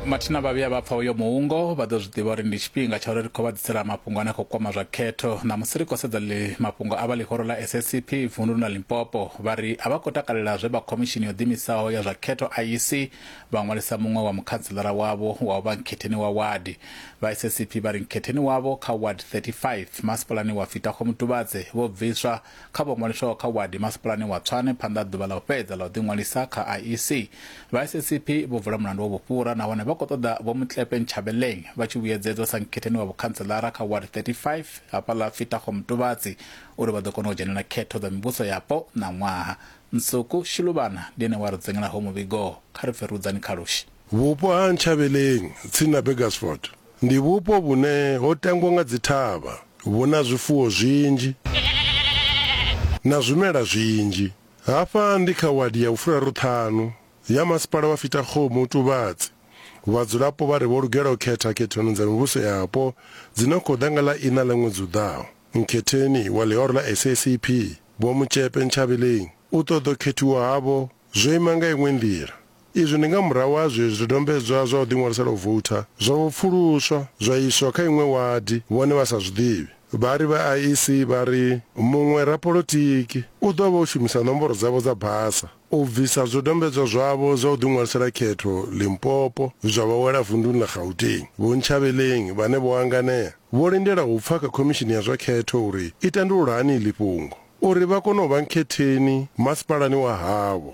mathina vha vhuya vha pfa uyo muungo vha ḓo zwi ḓivha uri ndi tshifhinga tsha uri ri khou vha ḓisela mafhungo ane a khou kwama zwa khetho ṋamusi ri khou sedza ḽi mafhungo a vha ḽihoro ḽa SACP vunduni ḽa Limpopo vha ri a vha khou takalela zwe vha khomishini yo ḓimisaho ya zwa khetho IEC vha ṅwalisa muṅwe wa mukhanselara wavho wa u vha nkhetheni wa wadi vha SACP vha ri nkhetheni wavho kha ward 35 masipalani wa Fitakho Mutuvhadze vho bviswa Kha vho ṅwaliswaho kha wadi masipalani wa Tshwane phanḓa ha ḓuvha ḽa u fhedza ḽa u ḓiṅwalisa kha IEC, vha SACP vho vula mulandu wa vhufhura nahone vha khou ṱoḓa Vho Motlepe Nchabeleng vha tshi vhuyedzedzwa sa nkhetheni wa vhukhantseḽara kha ward 35 hafhaḽa Fitagho Mutuvhatsi uri vha ḓo kona u dzhenela khetho dza mivhuso yapo ṋaṅwaha. Nsuku Shiluvhana ndi ene we a ri dzengela ho muvhigo. Kha ri pfe Rudzani Khalushi. Vhupo ha Nchabeleng, tsini na Burgersfort. Ndi vhupo vhune ho tangwa nga dzithavha, vhu na zwifuwo zwinzhi na zwimela zwinzhi. Hafha ndi kha wadi ya vhufhuraruṱhanu ya Masipala wa Fitakgomo Otubatse. Vhadzulapo vha ri vho lugela u khetha khethoni dza mivhuso yapo dzi no khou ḓa nga ḽa iṋa ḽa ṅwedzi u ḓaho. Mukhetheni wa ḽihoro ḽa SACP, Vho Motšepe Nchabeleng, u ṱoḓo khethiwa havho zwo ima nga iṅwe nḓila, Izwi ndi nga murahu ha zwe zwidodombedzwa zwa u ḓiṅwalisela u voutha zwa vho pfuluswa zwa iswa kha iṅwe wadi vhone vha sa zwi ḓivhi. Vhari vha IEC vha ri muṅwe rapolotiki u ḓo vha o shumisa nomboro dzavho dza basa u bvisa zwidodombedzwa zwavho zwa u ḓiṅwalisela khetho Limpopo zwa vha wela vunḓuni ḽa Gauteng. Vho Ntshabeleng vhane vho hanganea vho lindela u pfa kha khomishini ya zwa khetho uri i tandulula hani iḽi fhungo uri vha kone u vha nkhetheni masipalani wa havho.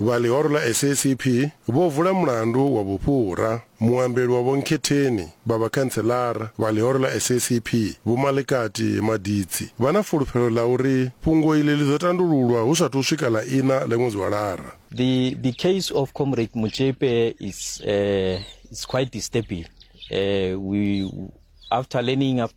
Vha ḽihoro ḽa SACP vho vula mulandu wa vhufhura. Muambeli wa Vho Nkhetheni vha vhakhantseḽara vha ḽihoro ḽa SACP Vho Malikati Maditsi vha na fulufhelo ḽa uri fhungo iḽi ḽi ḓo tandululwa hu sathu swika ḽa iṋa ḽa ṅwedzi wa Lara. The the case of Comrade Motšepe is uh, is quite disturbing. Uh, we after learning after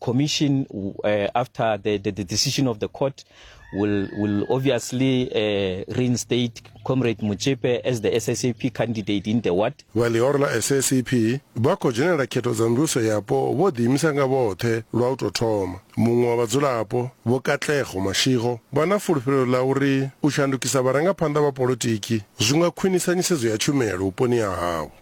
commission uh, after the, the, the decision of the court will will obviously uh, reinstate comrade Muchepe as the SSAP candidate in the ward vha ḽihoro ḽa SSAP vha khou dzhenela khetho dza mvhuso yapo vho ḓiimisa nga vhoṱhe lwa u tou thoma muṅwe wa vhadzulapo vho Katlego Mashigo vha na fulufhelo ḽa uri u shandukisa vharangaphanḓa vha polotiki zwi nga khwinisa nisedzo ya tshumelo vhuponi ha havho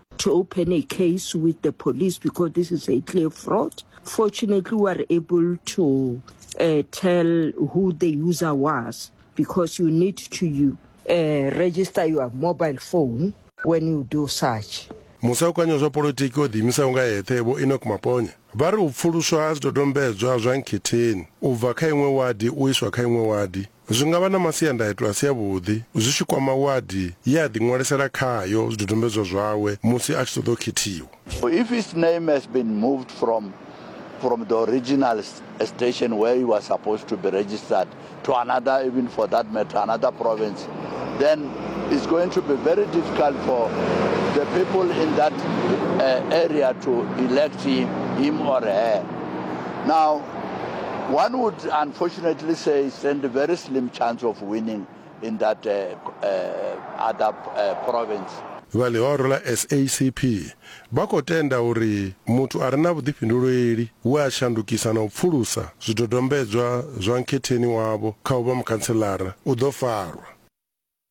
to open a case with the police because this is a clear fraud. Fortunately, we were able to uh, tell who the user was because you need to you, uh, register your mobile phone when you do such. musaukanyo zwa polotiki o ḓiimisaho nga eṱhe vho enoch maponya vha ri u pfuluswa ha zwidodombedzwa zwa nkhetheni u bva kha iṅwe wadi u iswa kha iṅwe wadi Zwi nga vha na masiandaitwa a si avhuḓi zwi tshi kwama wadi ye a ḓiṅwalisela khayo zwidodombedzwa zwawe musi a tshi ṱoḓa u khethiwa. If his name has been moved from from the original station where he was supposed to be registered to another, even for that matter, another province, then it's going to be very difficult for the people in that uh, area to elect him, him or her. Now, One would unfortunately say he stand a very slim chance of winning in that uh, uh, other uh, province. Vha ḽihoro ḽa SACP vha khou tenda uri muthu a re na vhuḓifhinduleli we a shandukisa na u pfulusa zwidodombedzwa zwa nkhetheni wavho kha u vha mukhantselara u ḓo farwa.